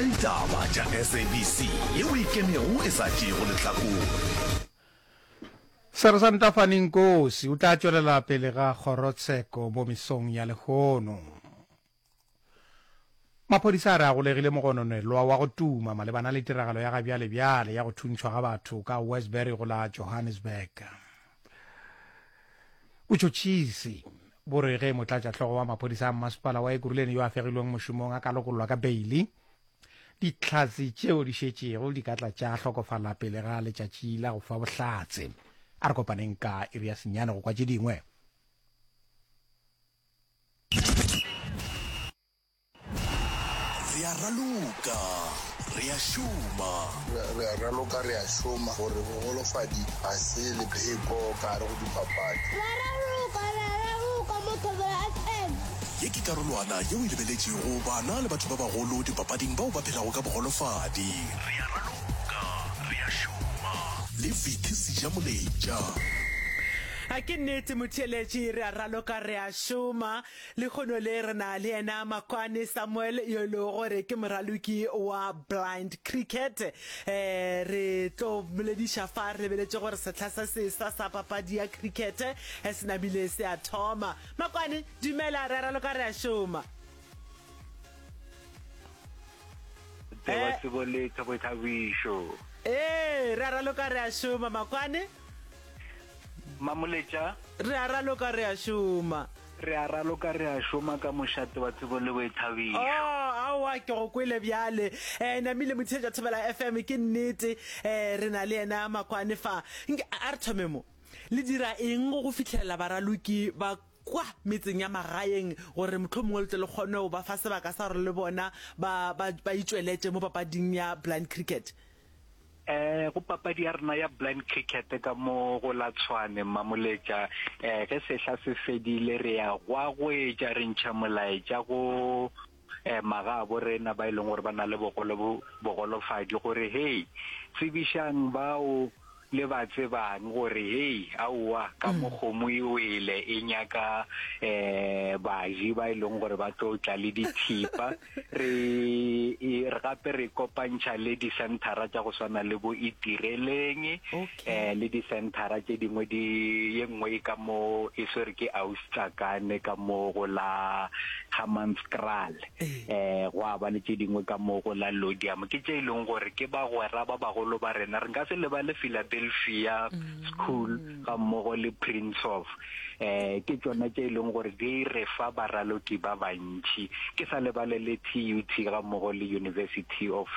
Ditaba tša SABC yeo e ikemego e sa tšeego lehlakore. Sersanta Fanny Nkosi o tla tšwelela pele ga kgorotsheko mo mesong ya lehono. Maphodisa a re a golegile mogononelwa wa go tuma malebana le tiragalo ya ga bjale-bjale ya go thuntšhwa ga batho ka Westbury go la Johannesburg. Botšhotšhisi bo re ge motlatšahlogo wa maphodisa a mmasepala wa Ekurhuleni yo a fegilweng mošomong a ka lokollwa ka beili, dihlatse tšeo di šetšego di ka tla tša hlokofala pele ga letšatši la go fa bohlatse. A re kopaneng ka iri ya senyane go kwa tše dingwe. Re a raloka, re a šoma. Re a raloka, re a šoma. Gore bogolofadi ga se lepheko ka gare go dipapadi. Re a raloka, re a raloka mo Thobela FM. Ye ke karolwana yeo e lebeletšego bana le batho ba bagolo dipapading bao ba phelago ka bogolofadi. Re a raloka, re a šoma. Le Vicky Sejamoletša. A ke nnete motheeletši, re a raloka, re a šoma. Lehono le re na le yena Makwane Samuel yo e lego gore ke moraloki wa Blind Cricket. Eh, re tlo bolediša fa re lebeletše gore sehla sa sesa sa papadi ya cricket eh, se namile se a thoma. Makwane, dumela, re a raloka re a šoma. Tsewa eh. tsebo letho boithabišo. Ee, re a raloka re a šoma Makwane. Mamoletša. Re a raloka re a šoma. Re a raloka re a šoma ka mošate wa tsebo le boithabišo. Oh, aowa ke go kwele bjale. Eh, namile motheetša Thobela FM ke nnete. Eh, re na le yena Makwane fa. Nke a re thome mo. Le dira eng go fihlelela baraloki ba kwa metseng ya magaeng gore motlho mongwe le tle le kgone go ba fa sebaka sa gore le bona ba ba ba itšweletse mo papading ya blind cricket? Eh, go papadi ya rena ya blind cricket ka mo go la tshwane mamoletša eh ge sehla se fedile re ya gwa goetša re ntšha molaetša go eh magabo rena ba e leng gore ba na le bogolo bogolofadi gore hey tsebišang bao Le ba tsebang gore hei aowa ka mo kgomo e wele e nyaka um baji ba e leng gore ba tlo tla le dithipa re e- re gape re kopantšha le dicenthara tša go swana le bo itireleng um le dicenthara tše dingwe di ye nngwe e ka mo e swere ke austakane ka mo go la hammanskraal um gwa ba le tše dingwe ka moo go la Lodiamo ke tše e leng gore ke bagwera ba bagolo ba rena re nka se lebale Philadelphia School ga mmogo le Prince of um ke tsona tše e leng gore di re fa baralodi ba bantšhi ke sa lebale le TUT ga mmogo le University of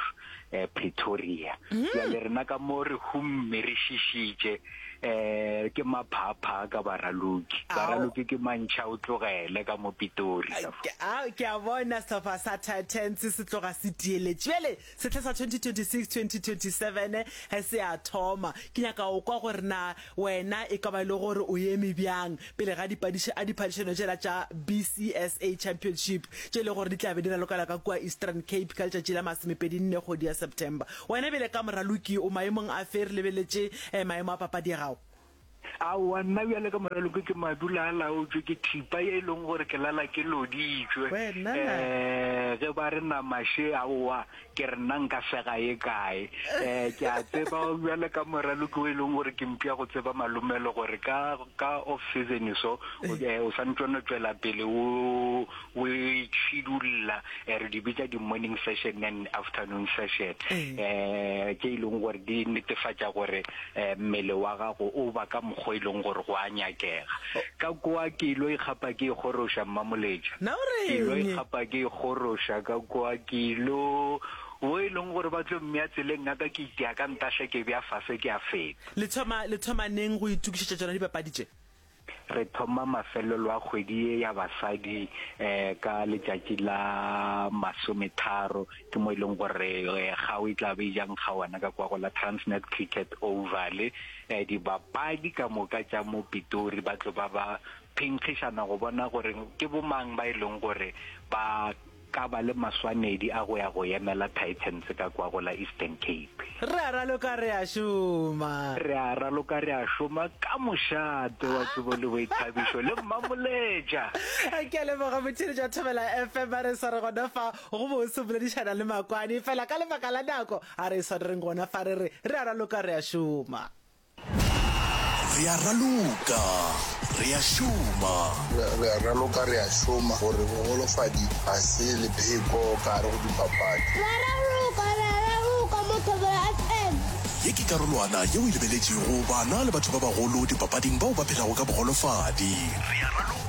eh, Pretoria mm. ya le rena ka mo re humme re shishitše eh ke maphapha ka baraloki baraloki ke mantšha o tlogele ka mo pitori a ke a bona setlhopha sa titans se tloga se tieletše bjale setlha sa 2026 2027 eh, se a thoma ke nyaka o kwa gore na Wena e ka ba e le gore o eme bjang pele ga dipadiši a diphadišano tšela tša BCSA Championship tše e le gore di tla be di ralokela ka kua Eastern Cape ka letšatši la masomepedi nne kgwedi ya September? Wena bjale ka moraloki o maemong a fe re lebeletše maemo a papadi ya gago? Aowa, nna bjale ka moraloki ke madula a laotšwe ke thipa ye e leng gore ke lala ke loditšwe. Wena na? Ee, ge ba re nama še, aowa, Ke re nna nka sega ye kae? Eh, ke a tseba bjale ka moraloki o e leng gore ke mpša go tseba malomelo gore ka ka off season so o eh, o swanetše no tšwela pele o o itšhidulla eh, re di bitša di-morning session and afternoon session Eh. eh, tše e leng gore di netefatša gore eh, mmele wa gago o ba ka mokgwa e leng gore go a nyakega ka kwa ke ilo ikgapa ke ikgoroša mmamoletša Na o reng? ke ilo ikgapa ke ikgoroša ka kwa ke ilo wo e leng gore ba tlo mmea tseleng ya ka ke itea ka ntaša ke bea fase ke a feta le thoma le thoma neng go itukišetša tšona dipapadi tše Re thoma mafelelo a kgwedi ye ya basadi ka letšatši la masometharo, ke mo e leng gore kgao e tla be e ja nkga ona ka kwa go la Transnet Cricket Oval. Dibapadi ka moka tša mo Pitori ba tlo ba ba phenkgišana go bona gore ke bomang ba e leng gore ba Ka ba le maswanedi a go ya go emela Titans ka kwago la Eastern Cape. Re a raloka re a šoma. Re a raloka re a šoma ka mošate wa tsebo le boithabišo le Mmamoletša. Ke a leboga motheeletši wa Thobela FM a re sware gona fa go bose boledišana le Makwani fela ka lebaka la nako a re swarereng gona fa re re re a raloka re a šoma. Re a raloka, re a šoma. Re a raloka, re a šoma. Gore bogolofadi ga se lepheko ka gare go dipapadi. Re a raloka, re a raloka mo Thobela FM. Ye ke karolwana yeo e lebeletšego bana le batho ba bagolo dipapading bao ba phelago ka bogolofadi. Re a raloka.